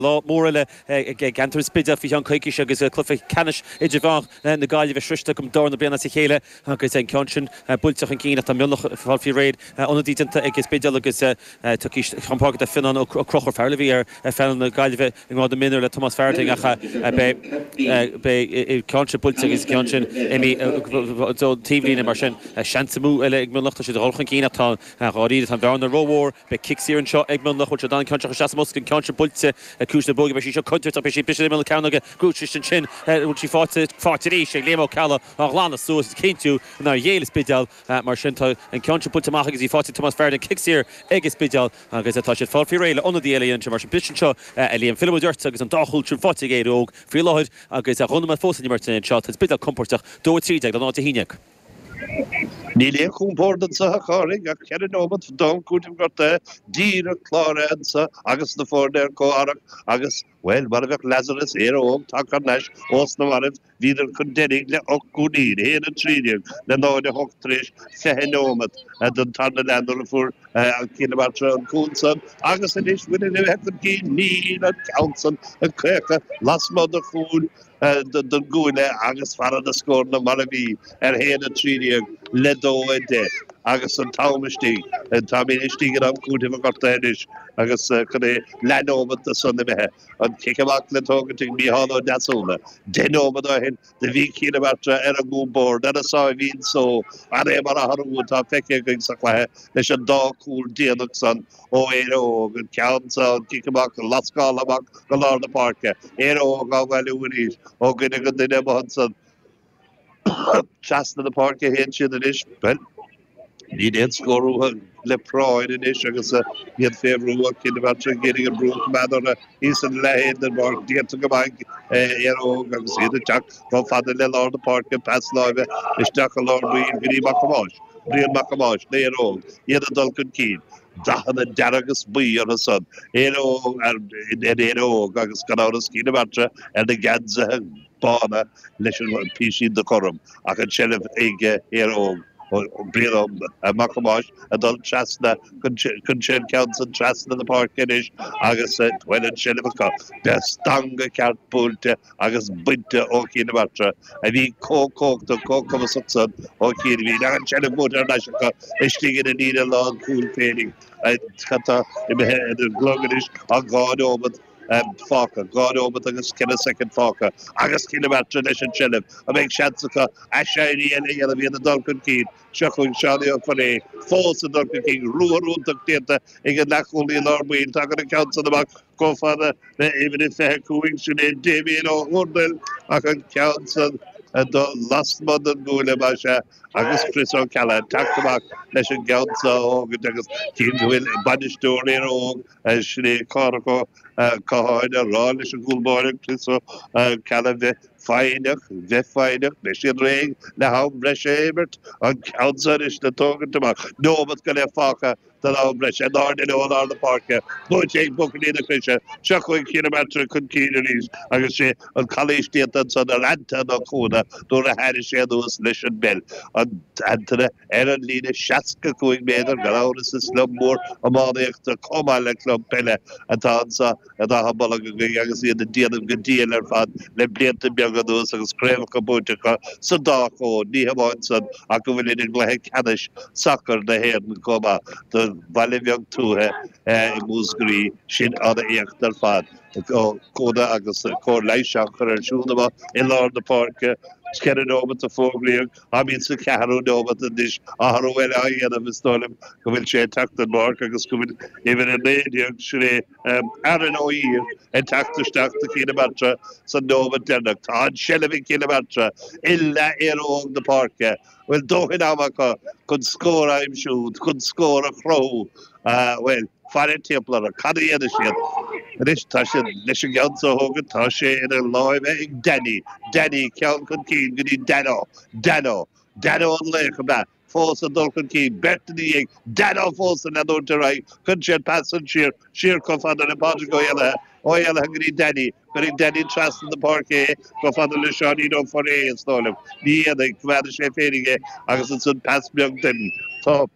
Lá mór eile i gceantar an Spidéil faoi cheann coicíse agus cluiche ceannais idirmheánach na Gaillimhe sroichte acu don dara bliain as a chéile agus an ceann sin buailte chun cinn ach tá Mionlach ag fáil faoi réir. Ionadaí déanta ag an Spidéal agus ag tíocht chun páirce tá Fionnán Ó Conchúir, fear a bhí ar phainéal na Gaillimhe i ngrád na mionúr le Tomás Farthing ach beidh an ceann seo buailte agus an ceann sin taobhlíne mar sin seans amháin eile ag Mionlach. Tá siad ag dul chun cinn ach tá an Dáiríre, tá an bhearna rómhór. Beidh cic saor anseo ag Mionlach. Buailfidh siad an ceann seo isteach sa mbosca, an ceann sin buailte le ciumhais na bróige. Beidh sí seo contúirteach. Beidh sí ag briseadh ar imeall na cearnóige. Grúdteist ansin. An bhfuil sí fáite? Fáite arís ag Liam Ó Ceallaigh á ghlanadh suas is a chinntiú nár ghéill an Spidéal. Mar sin, tá an ceann sin buailte amach agus í fáite ag Tomás Farthing. Cic saor ag an Spidéal agus tá siad ag fáil faoi réir le ionadaí eile a dhéanamh sin. Mar sin, briseadh anseo a Liam. Fillfimid ort agus an dá chúl sin fáite ag Éire Óg faoi láthair agus dhá nóiméad fós in imirt anseo. Tá an Spidéal compóirteach. Dó a trí déag le náid a haon déag. Níl aon chompord anso, a Chárthaigh, ach ceithre neomat d'am cúitimh gortaithe díreach cláraithe anso agus na foirne ar comhtharrac agus, bhuel, mar a bheadh Lazarus, Éire Óg tagtha thar n-ais ós na mairbh, bhíodar chun deiridh le ocht gcúilín, a haon, a trí déag le náid a hocht tar éis fiche neomat don tarna leath nuair a fuair Cill na Martra an cúl san agus anois, bhainfinn a bheith chun cinn, níl an ceann san ag cuachadh lasmuigh de chúl don gcúinne agus fanann na scóranna mar a bhí, a haon a trí déag le dó a deich agus an t-am istigh. Táimid istigh in am cúitimh gortaithe anois agus cheana leath nóimeat de son imithe. An cic amach le tógaint ag Micheál Ó Deasúna. Deich nóimeat ó shin do bhí Cill na Martra ar a gcompord ar a sáimhín só. Cad é mar athrú atá feicthe againn sa chluiche leis an dá chúl déanach san? Ó Éire Óg, an ceann san, an cic amach á lascáil amach, go lár na páirce. Éire Óg á bhailiú arís. Ó dhuine go duine amuigh ansan. Trasna na páirce a théann siad anois. Bhuel, níl aon scór uathu le práinn anois agus iad fé bhrú ó Chill na Martra, ag iarraidh an brú a choimeád orthu. Ina leath féin den bpáirc déanta go maith ag Éire Óg agus iad ag teacht chomh fada le lár na páirce, pas láimhe isteach i lár baill go dtí Mac Thomáis, Brian Mac Thomáis, le hÉire Óg, iad ag dul chun cinn. Dathanna dearg is buí orthu san, Éire Óg agus gan amhras Cill na Martra ar na geansaithe. bána leis an bpísín de ghorm ach an tseilbh aige Éire Óg Brian Mac Thomáis ag dul trasna chuir sé an ceann san trasna na páirce anois agus bhuel an tseilbh acu bheadh stangadh ceart buailte agus bainte ó Chill na Martra a bhí comh cumhachtach comh cumasach san ó chianaibhín ach an tseilbh buaite thar n-ais acu istigh ina líne lán cúil féinig cad tá imithe ar an gclog anois ach dhá neomat fágtha, dhá nóiméad agus ceithre soicind fágtha agus Cill na Martra leis an tseilbh, an mbeidh seans acu aiséirí eile a dhéanamh, iad ag dul chun cinn. Seo chugainn Seánie Ó Forréidh fós ag dul chun cinn, ruathar iontach déanta ag an leathchúlaí i lár baill, tagann an ceann san amach chomh fada le uimhir a 25, sin é Damien Ó hÚrdail ach an ceann san ag dul lasmuigh den gcuaille más ea agus Chris Ó Ceallaigh teacht amach leis an gceann so a thógaint agus cé go bhfuil bainisteoir Éire Óg Sin é Cárthach Ó Catháin ag rá leis an gcúl báire Chris Ó Ceallaigh a bheith foighneach, bheith foighneach, beidh siad réidh le ham breise a imirt, an ceann seo anois á thógaint amach. Neomat go leith fágtha don am breise, in airde leo i lár na páirce, buaite ag buachaillí na Croise. Seo chugainn Cill na Martra chun cinn arís agus sé an calaois déanta ansan ar Antaine Ó Cuana nuair a thairrig sé anuas leis an bpeil an t-Antaine Ar an líne 65 méadar gan amhras is club mór iománaíochta comh maith le club peile atá anso in Achadh Bolg againn agus iad ag déanamh go diail ar fad le blianta beaga anuas agus craobhacha buaite acu sa dá chód. Ní hamháin san ach go bhfuilid i gcluiche ceannais sacair na hÉireann comh maith. Do bhaile bheag tuaithe i Múscraí sin an-éacht ar fad. Ó Cuana agus cóir leighis á chur air siúd amuigh i lár na páirce. Cheithre nóimeat a fógraíodh. Táimid sa cheathrú nóimeat anois, athrú eile á dhéanamh, is dóigh liom go bhfuil sé ag teacht den bpáirc agus go bhfuil uimhir 19, sin é Aaron Ó hUidhir, ag teacht isteach do Cill na Martra sa nóimeat deireanach. Tá an tseilbh ag Cill na Martra, i leath Éire Óg na páirce, bhfuil dóthain ama acu chun scór a aimsiú, chun scór a chruthú. Ah, bhuel, faire timpeall orthu. Cad a dhéanfaidh siad? Anois, tá sé leis an gceann seo a thógaint, tá sé ina lámha ag Danny. Danny, ceann chun cinn, go dtí Dano. Dano. Dano an laoch, ab ea? Fós ag dul chun cinn. Beirt ina dhiaidh. Dano fós ag leanúint ar aghaidh. Cuireann sé an pas san siar, siar chomh fada le Pádraig Ó hÉalaithe. Ó hÉalaithe go dtí Danny. Cuirfidh Danny trasna na páirce é, chomh fada le Seáinín Ó Forréidh, is dóigh liom. Ní dhéanfaidh. Coimeádfaidh sé féinig é agus ansan pas beag déanta.